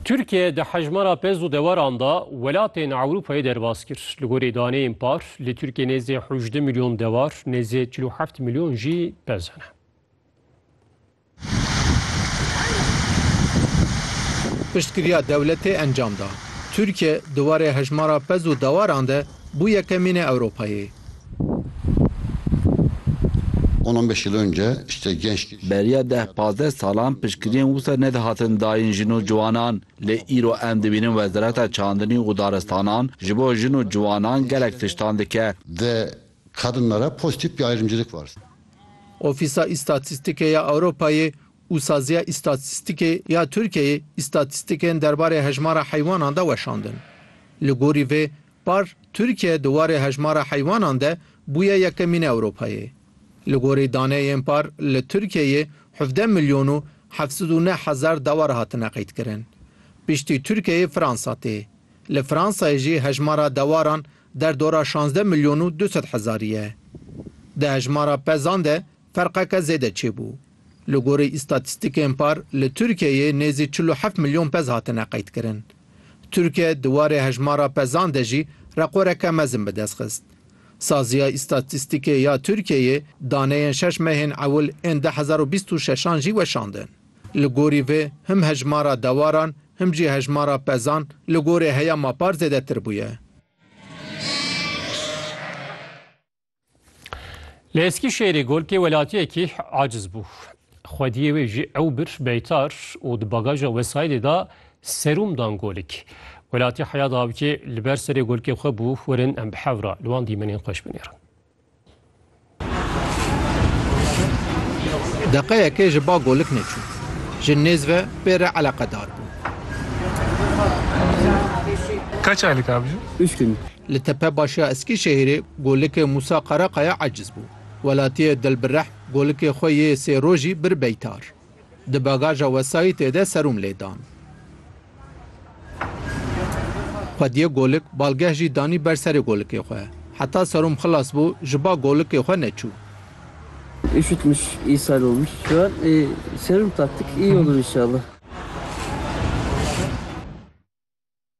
Tirkiye di hejmara pez û deweran de welatên Ewropayê derbas kir. Li gorî daneyên par li Tirkiyê nêzî hejdeh milyon dewar, nêzî çil û heft milyon jî pez hene. Piştgiriya dewletê encam da. Tirkiye di warê hejmara pez û dewaran de Bû yekemînê Ewropayê. On on beş yıl önce işte genç. Beriya deh pazdeh salan piştgiriyên wisa nedihatin dayîn jin û ciwanan, lê îro em dibînin Wezareta Çandinî û Daristanan ji bo jin û ciwanan gelek tiştan dike. De kadınlara pozitif bir ayrımcılık var. Ofîsa Îstatîstîkê ya Ewropayê û Saziya Îstatîstîkê ya Tirkiyeyê îstatîstîkên derbarê hejmara heywanan de weşandin. Li gorî vê par Tirkiye di warê hejmara heywanan de bûye yekemîn Ewropayê. Li gorî daneyên par li Tirkiyeyê hevdeh milyon û heft sed û neh hezar dewar hatine qeydkirin. Piştî Tirkiyeyê Fransa tê. Li Fransayê jî hejmara dewaran der dora şazdeh milyon û du sed hezarî ye. Di hejmara pezan de Ferqeke zêde çêbû. Li gorî îstatîstîkên par li Tirkiyeyê nêzî çil û heft milyon pez hatine qeydkirin. Tirkiye di warê hejmara pezan de jî reqoreke mezin bi dest xist. Saziya Îstatîstîkê ya Tirkiyeyê daneyên şeş mehên ewil ên du hezar û bîst û şeş an jî weşandin. Li gorî vê him hejmara dewaran him jî hejmara pezan li gorî heyama par zêdetir bûye. Li Eskîşehîrê golkê welatiyekî aciz bû. Xwediyê wê jî ew bir beytar û di bagaja wesayîdê da serûm dan golik. Welatî heya dawikê li ber serê golkê xwe bû werin em bi hevra li wan dîmenên xweş binêrin. Deqeyekê ji ba golik neçû. Ji nêz ve pê re eleqedar bû. Kaç aylık abicim? Üç gün. Li tepe başiya Eskîşehîrê golikê Mûsa Qarakaya eciz bû. Welatiyê Dilbirehm golikê xwe yê sê rojî bir beytar. Di bagaja wesayîtê de serum lê dan. Xwediyê golik balgeh jî danî ber serê golikê xwe. Heta serum xilas bû ji ba golikê xwe neçû. Üşütmüş, ishal olmuş. Şu an e, serum taktık, iyi olur inşallah.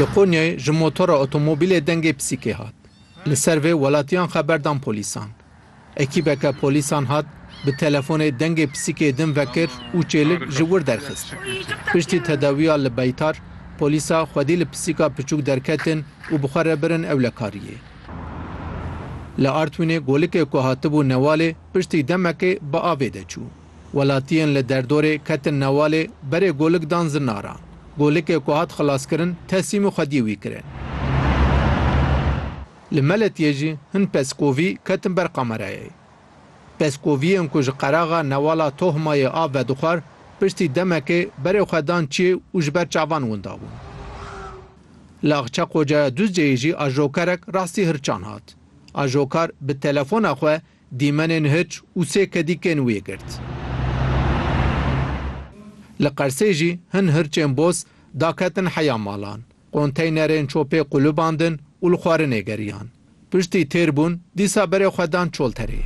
Li Konyayê ji motora otomobîlê dengê pisîkê hat. Li ser vê welatiyan xeber dan polîsan. Ekîbeke polîsan hat bi telefonê dengê pisîkê din vekir û çêlik ji wir derxist. Piştî tedawiya li Beytar, polîsa xwedî li pisîka piçûk derketin û bi xwe re birin ewlekariyê. Li Artwînê golikê ku hatibû Newalê piştî demekê bi avê de çû. Welatiyên li derdorê ketin newalê, berê golik dan zinara. Golikê ku hat xilaskirin tesîmî xwediyê wî kirin. Li Meletiyê jî hin peskovî ketin ber kamerayê. Peskoviyên ku ji qeraxa newala Tohmayê av vedixwar, piştî demekê berê xwe dan çiyê û ji ber çavan winda bûn. Li Axçeqocaya Duzceyê jî ajokerek rastî hirçan hat. Ajokar bi telefona xwe Dîmenên hiç û sê kedîkên wê girt. Li Qersê jî hin hirçên boz daketin heya malan. Konteynerên çopê qulubandin û li xwarinê geriyan. Piştî têr bûn dîsa berê xwe dan çolterê.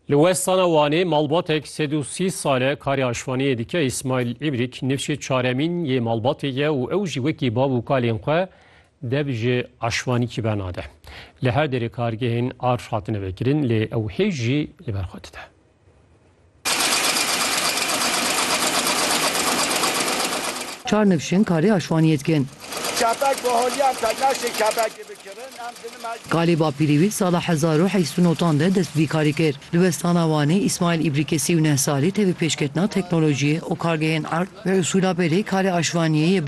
Li westana Wanê malbatek sed û sî sal e karê aşvaniyê dike Îsmaîl Îbrîk nifşê çaremîn yê malbatê ye û ew jî wekî bav û kalên xwe dev ji aşvanîkî ve nade. Li her derê kargehên arj hatine vekirin lê ew hêj jî li ber xwe dide. Çar nivşin karê aşwaniyê dikin. Kebek bi holya ka naşê kebekê bikirin, em di nima jî. Kalê Bapîrî wî di sala hezar û heşt û notan de dest bi vî karî kir. Di westana Wanê Îsmaîl Îbrîkê sî û neh salî tevî pêşketina teknolojiyê û kargehên erd ve usûla berê karê aşvaniyê yê